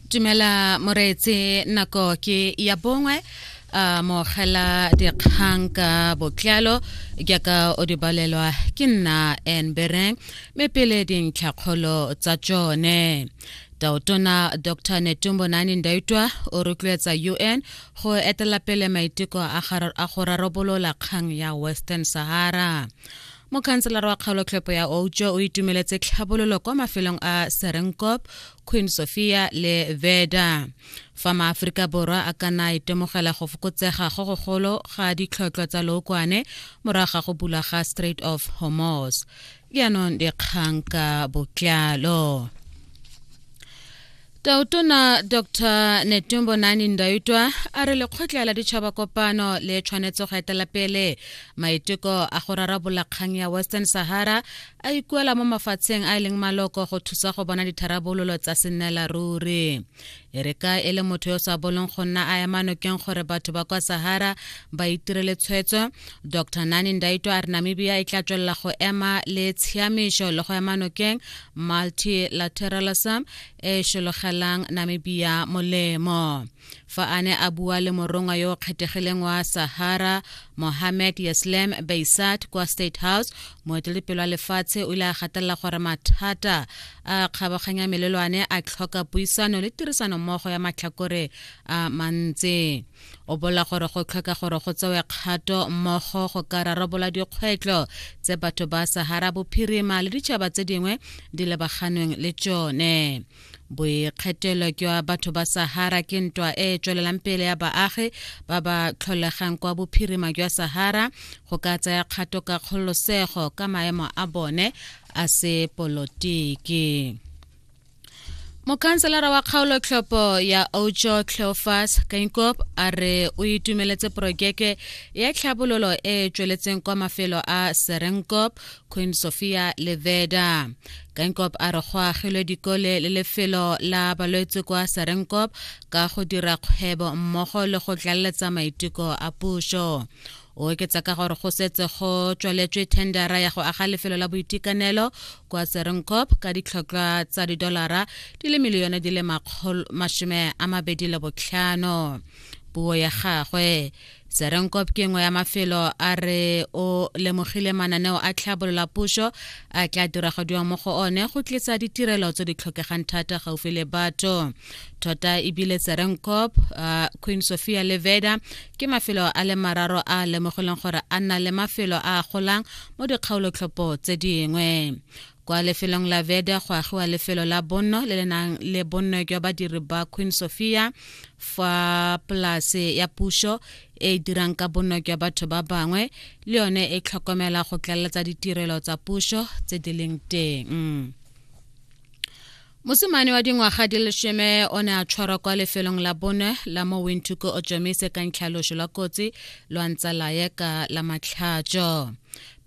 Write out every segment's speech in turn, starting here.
tumela moreetse nako ke ya bongwe a mogela dikgang ka botlalo jaaka o di balelwa ke nna enbereng mme pele dintlhakgolo tsa tsone taotona dr netumbo nani ndaitwa o rotloetsa un go etela pele maiteko a go rarabolola kgang ya western sahara mokhanselara wa kgaolotlhopo ya outsho o itumeletse tlhabololo kwa mafelong a serenkop queen sophia le veda fa maaforika borwa a ka na a itemogela go fokotsega go gogolo ga ditlhotlhwa tsa lookwane morago ga go bulwa ga strait of hormos jaanong dikgang ka botlalo Tautona Dr Netumbo Nani Ndaitwa a re lekgotla la ditšhaba kopano le tshwanetse go etela pele maiteko a go rarabola kgang ya Western Sahara a ikuela mo mafatsheng a e leng maloko go thusa go bona ditharabololo tsa sennela ruri e re ka e le motho yo o sa bolong go nna a ema nokeng gore batho ba kwa Sahara ba itirele tshwetso Dr Nani Ndaitwa a re Namibia e tla tswelela go ema le tshiamišo le go ema nokeng multilateralism e šologelang namibia molemo fa a ne a bua le morongwa yo o kgethegileng wa sahara mohammed yeslem beisat kwa state house moetelepelo wa lefatshe o ile a gatelela gore mathata a kgabaganya melelwane a tlhoka puisano le tirisanommogo ya matlhakore a mantsi o bola gore go tlhoka gore go tsewe kgato mmogo go ka rarabola dikgwetlho tse batho ba sahara bophirima le ditšhaba tse dingwe di lebaganweng le tsone boikgethelo jwa batho ba sahara ke ntwa e e tswelelang pele ya baagi ba ba tlholegang kwa bophirima jwa sahara go ka tsaya kgato ka kgololosego ka maemo a bone a sepolotiki mokhanselara wa kgaolotlhopho ya ojo cleofas kainkop a re o itumeletse porojeke ya tlhabololo e e tsweletseng kwa mafelo a serenkop queen sophia le veda kainkop a re go agilwe dikole le lefelo la balwetse kwa serenkop ka go dira kgwebo mmogo le go tlaleletsa maiteko a puso o oketsa ka gore go setse go tswaletswe tendera ya go aga lefelo la boitekanelo kwa serenkop ka ditlhotlhwa tsa didolara di le milione di le masome a mabedi le botlhano puo ya gagwe serenkop ke nngwe ya mafelo a re o lemogile mananeo a tlhabolola puso a tla diragadiwang mo go one go tlisa ditirelo tse di tlhokegang thata gaufi le batho tota ebile serenkop uh, queen sophia leveda ke mafelo a le mararo a lemogileng gore a nna le mafelo a golang mo dikgaolotlhopho tse dingwe kwa lefelong la veda go agiwa lefelo la bonno le le nang le bonno jwa badiri ba queen sophia fa polase ya puso e e dirang ka bonno jwa batho ba bangwe le yone e tlhokomela go tlaleletsa ditirelo tsa puso tse di leng teng mosimane wa dingwaga di leshome o ne a tshwarwa kwa lefelong la bone la mo wintuko o tšomise ka ntlhaloso lwa kotsi lwa ntsa laye ka la matlhatso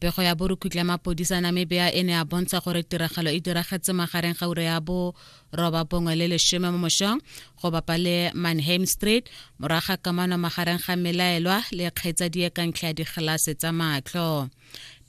pego ya borukhutla mapodisa namibia e ne a bontsha gore tiragalo e diragetse magareng ga ure ya bo roba bongwe le leshome mo mošong go bapa le manham street moraga kamano magareng ga melaelwa le kgaitsadie ka ntlha ya digelase tsa matlho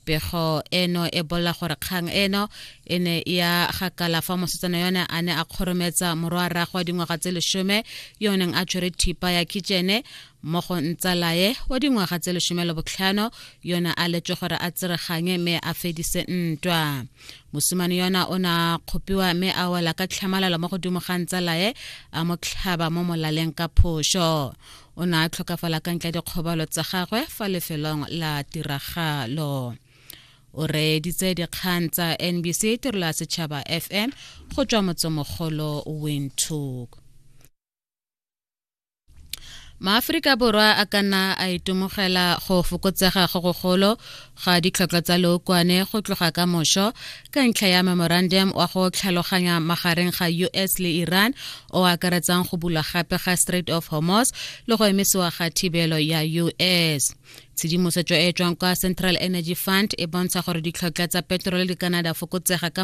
pego eno e bolela gore kgang eno e ne ya gakala fa mosetsana yone a ne a kgorometsa morwa rrago wa dingwaga tse lesome yo o neng a tshwere thipa ya kitšene mo go ntsalaye wa dingwaga tse lesome le botlhano yone a letswe gore a tsereganye mme a fedise ntwa mosimane yona o ne a kgopiwa mme a wela ka tlhamalalo mo godimo ga ntsalaye a mo tlhaba mo molaleng ka phoso o ne a tlhokafala ka ntle dikgobalo tsa gagwe fa lefelong la tiragalo o reeditse dikgang tsa nbc tirelo ya setšhaba fm go tswa motsemogolo windhoek maaforika borwa a ka nna a itemogela go fokotsega go gogolo ga ditlhoko tsa lookwane go tloga ka mošo ka ntlha ya memorandum wa go tlhaloganya magareng ga us le iran o akaretsang go bulwa gape ga strait of hormos le go emisiwa ga thibelo ya us tshedimosetso e tswang kwa central energy fund e bontsha gore ditlhotlha tsa petrole di kanada fokotsega ka